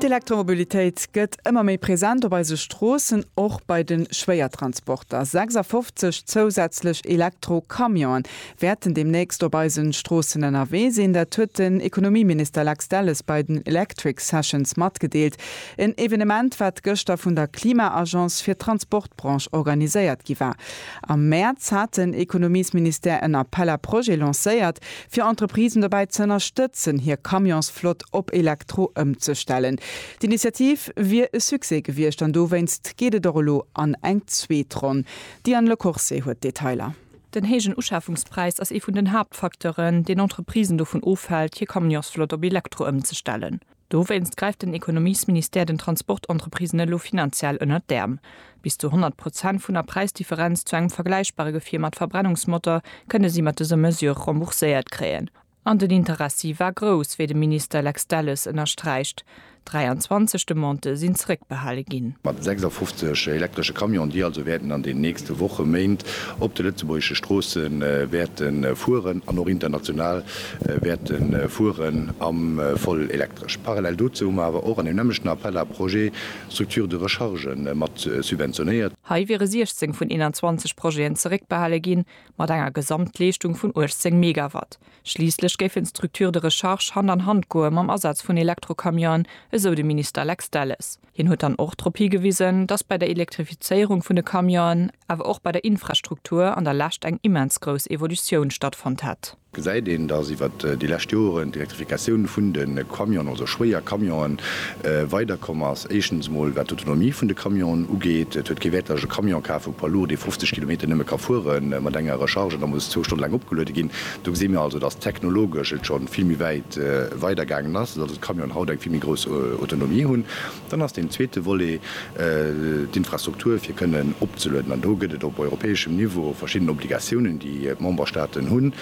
D'Elektromobilitéit gëtt ëmmer méi present op eise Stroossen, och bei de Schwéiertransporter. 56 zousätzlech Elektro-Camionen wäerten deemnächst op eise Stroossen ënnerwee sinn. Dat huet den Ekonomieminister Lex Delles bei den Electric Sessions matgedeelt. En Evenement, wat gëschter vun der Klima-Agence fir d'Transportbranche organiséiert gi war. Am Mäerz hat den Ekonomiesministère en Appel à projets lancéiert, fir Entreprisen dobäi ze ënnerstëtzen, hir Camionsflott op Elektro ëmzestellen. D'Initiativ wier e Succès gewiescht an dowéinst geet et och elo an eng zweet Ronn. D'Diane Lecourcey huet d'Detailer. Den héijen Uschafungspräis ass ee vun den Haaptfacteuren, deen Entreprisen dovun ofhält, hir Camionsflott op Elektro ëmzestellen. Dowéinst gräift den Ekonomiesministère den Transportentreprisen elo finanziell ënnert d'Äerm. Bis zu 100 Prozent vun der Präisdifferenz zu engem vergläichbare Gefier mat Verbrennungsmotor kënne si mat dëser Mesure rembourséiert kréien. An den Interessi war grouss, wéi de Minister Lex Delles ënnersträicht. 23 Demandë sinn zeréckbehale ginn. Mat 56 elektresche Camion, déi also wäerten an den nächste Woche, Méint op de lëtzebuergesche Stroosse wäerte fueren an och international wäerte fueren a voll elektresch. Parallel dozou hu mer awer och an deem nämmlechten Appel à projets Structures de recharge mat subventionéiert. Hei wiere 16 vun 21 Projeten zeréckbehale ginn, mat enger Gesamtleeschtung vun 18 Megawatt. Schliisslech géifen d'Structures de recharge Hand an Hand goe mam Asaz vun Elektrocamionen, esou de Minister Lex Delles. Hien huet dann och drop higewisen, datt bei der Elektrifizéierung vun de Camionen, awer och bei der Infrastruktur an der Lescht eng immens grouss Evolutioun stattfonnt hätt. Gesäit een, datt iwwert déi lescht Joren d'Elektrifikatioun vun de Camionen, also schwéier Camionen, weider komm ass. Éischtens emol wat d'Autonomie vun de Camionen ugeet. Et huet kee Wäert, datt ech e Camion kafen, e Poids lourd, dee 50 Kilometer nëmme ka fuere mat enger Recharge an da muss zwou Stonne laang opgeluede ginn. Do gesi mir also, datt technologesch et scho vill méi wäit weidergaangen ass. Camionen haut eng vill méi grouss Autonomie hunn, dann ass deen zweete Volet d'Infrastruktur fir kënnen opzelueden. An do gëtt et op europäeschem Niveau verschidden Obligatiounen, déi d'Memberstaaten hunn.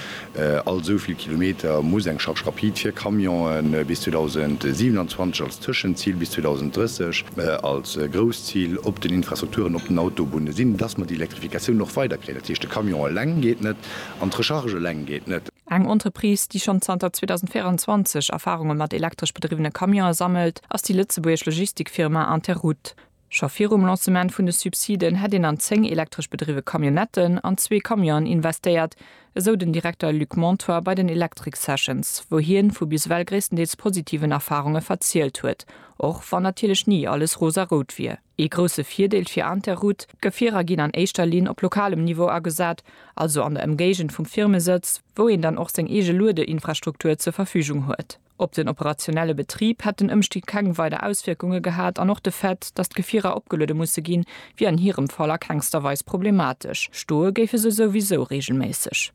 All esou vill Kilometer muss eng Charge rapide fir Camionen bis 2027 als Tëschenzil, bis 2030 als Grousszil op den Infrastrukturen op den Autobunne sinn, dass mer déi Elektrifikatioun och weider kréien. Dat heescht, de Camion eleng geet net an d'Recharge eleng geet net. Eng Entreprise, déi schonn zanter 2024 Erfarunge mat elektresch bedriwwene Camionen sammelt, ass déi lëtzebuergesch Logistikfirma Interroute. Scho virum Lancement vun de Subsiden hätt een an zéng elektresch bedriwwe Camionnetten an zwee Camionen investéiert, esou den Direkter Luc Montoy bei den Electric Sessions, wou hien vu bis ewell gréisstendeels positiven Erfarunge verzielt huet, och wann natierlech ni alles rosarout wier. Ee grousse Virdeel fir Interroute, D'Gefierer ginn an éischter Linn op lokalem Niveau agesat, also an der Emgéigend vum Firmesëtz, wou een dann och seng eege Luedeinfrastruktur zur Verfügung huet. Op den operationelle Betrib hätt den Ëmstieg keng weider Auswierkunge gehat an och de Fait, datt d'Gefierer opgeluede musse ginn, wier an hirem Fall a kengster Weis problematesch, stoe géife se souwisou reegelméisseg.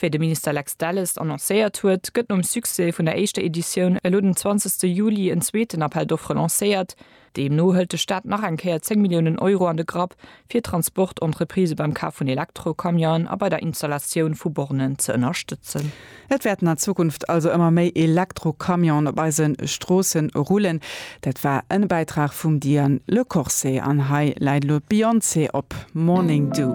Wéi de Minister Lex Delles annoncéiert huet, gëtt nom Succès vun der éischter Editioun elo den 20 ste Juli en zweeten Appel d'offres lancéiert. Deemno hëlt de Staat nach eng Kéier 10 Milliounen Euro an de Grapp, fir Transportentreprisë beim Kaf vun Elektrocamionen a bei der Installatioun vu Bornen ze ënnerstëtzen. Et wäerten an Zukunft also ëmmer méi Elektrocamionen op eise Stroosse rullen. Dat war en Bäitrag vum Diane Le Corse an hei läit elo d'Beyoncé op Morning Dew.